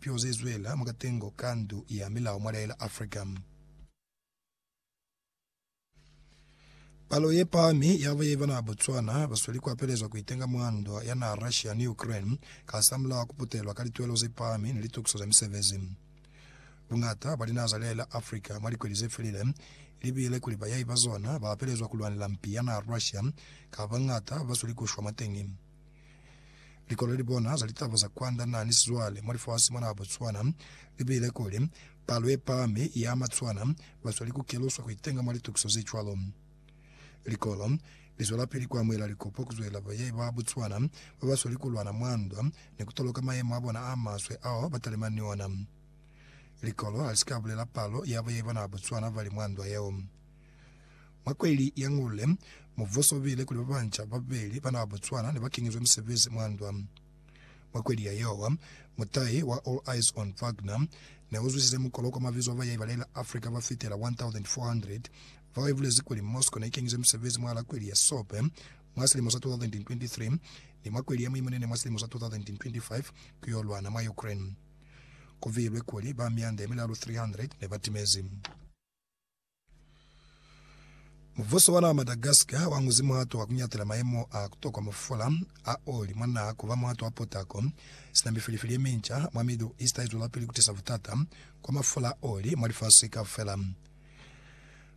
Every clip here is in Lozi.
Pio ze zwela mwa katengo ka Ndu ya Milao mwa Laela Africa. Palo ye pahami ya baye ba naa Botswana ba sweli ku apelezwa ku itenga mwa ndwa ya naa Russia ni Ukraine kasamulaho ku putelwa ka lituelo ze pahami ni litukiso za misebezi. Bungata bwa linaha za Laela Africa mwa likweli ze felile li bile kuli bayahi ba zona ba apelezwa ku lwanela mpi ya naa Russia kapa bangata ba sweli ku shwa mwateñi. Likolo li bona za litaba za kwanda na ni sizwale mwa lifasi mwa naha Botswana li buile kuli, Palo ye pahami ya Matswana ba sweli ku keluswa ku itenga mwa litukiso ze cwalo. Likolo li zwelapili ku amuhela likopo ku zwelela bayahi ba Botswana ba ba sweli ku lwana mwa ndwa ni ku toloka mayemo a bona a maswe ao ba talimani ni ona. Likolo ha li si ka bulela palo ya bayahi ba naha Botswana ba li mwa ndwa yeo. Mwa kweli ya Ngule, mubuso ubile kuli babanca babeli ba naha Botswana nebakenyezwe misebezi mwa ndwa. Mwa kweli ya Yowa, mutahi wa All Eyes on Wagner neuzwisize mukolo kwa mabizo aba ya ibalela Africa bafitela 1,400 bao ibulezi kuli Moscow neikenyeze misebezi mwahala kweli ya Sope mwa silimo sa 2023 ni mwa kweli ya Muimunene mwa silimo sa 2025 kuyo lwana mwa Ukraine. Kuviilwe kuli ba mianda yemilalu 300 nebatimezi. Mubuso wa naa Madagascar wa ñuzi muhato wa kuñatela mayemo a kutokwa mo fola a oli mwa naa kuba muhato wa potako, sina mifilifili yeminca mwa Middle East haizwelapili kutisa butata kwa mafola a oli mwa lifasi kaufela.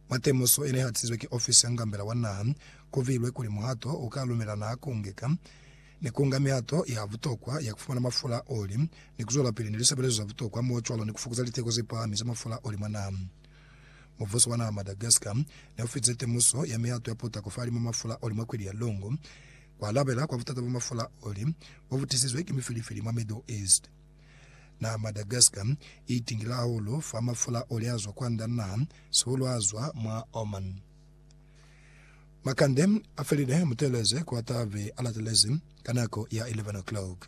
Mwa temuso yene ihatisizwe ki ofisi ya ngambela wa naha, kuviilwe kuli muhato u ka lumela naa kungeka ni kunga mihato ya butokwa ya kufumana mafola a oli ni kuzwelapili ni lisebelezo za butokwa, mocwalo ni kufukuza liteko zepahami za mafola a oli mwa naha. Mubuso wa naha Madagascar ne u fize temuso ya mihato ya putako fahalimw'a mafula a oli mwa kweli ya Longo, ku alabela kwa butata bwa mafula a oli bo bu tisizwe ki mifilifili mwa Middle East. Naha Madagascar i itingile hahulu fa mafula a oli a zwa kwand'a naha, sihulu a zwa mwa Oman. Makande a felile, muteeleze ku a tabe a latelezi ka nako ya 11 o'clock.